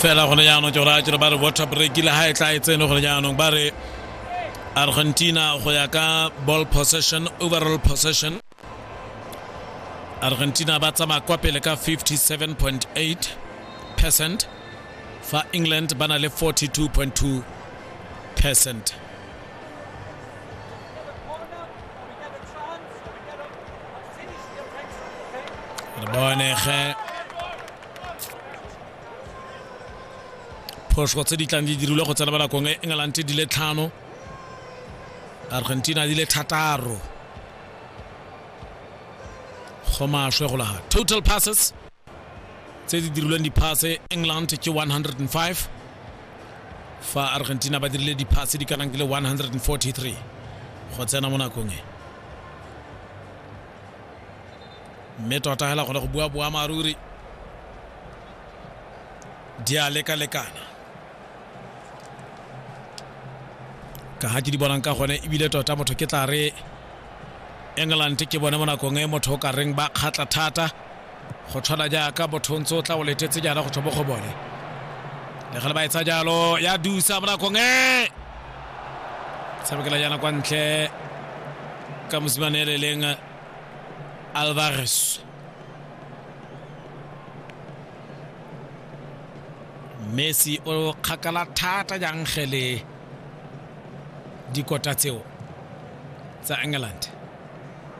fela gone jaanong ke gore a kere ba re water break le ga e tla e tsene gone jaanong ba re argentina go ya ka ball possession overall possession argentina ba tsamaya kwa pele ka 57.8 percent fa england ba na le 42.2 percent re bone ge phoso tse di tlang di dirilwe go tsena ba nakong e england di le tlhano argentina di le thataro go maswe go laga total passes tse di dirilweng diphase england ke 105 fa argentina ba dirile diphase di kanang ke le 143 go tsena mo nakong e mme tota fela gone go bua boammaaruri di a lekalekana ka ga ke di bonang ka gone ebile tota motho ke tla re england ke bone mo nakong e motho o ka reng ba kgatla thata go tshwana jaaka motho ntse o tla o letetse jaana go tswa mo go bone le gale ba etsa jalo ya dusa mo nakong e tshamekela jaana kwa ntle ka mosimane e le leng Alvarez. Messi o kgakala thata jang ge le dikota tseo tsa England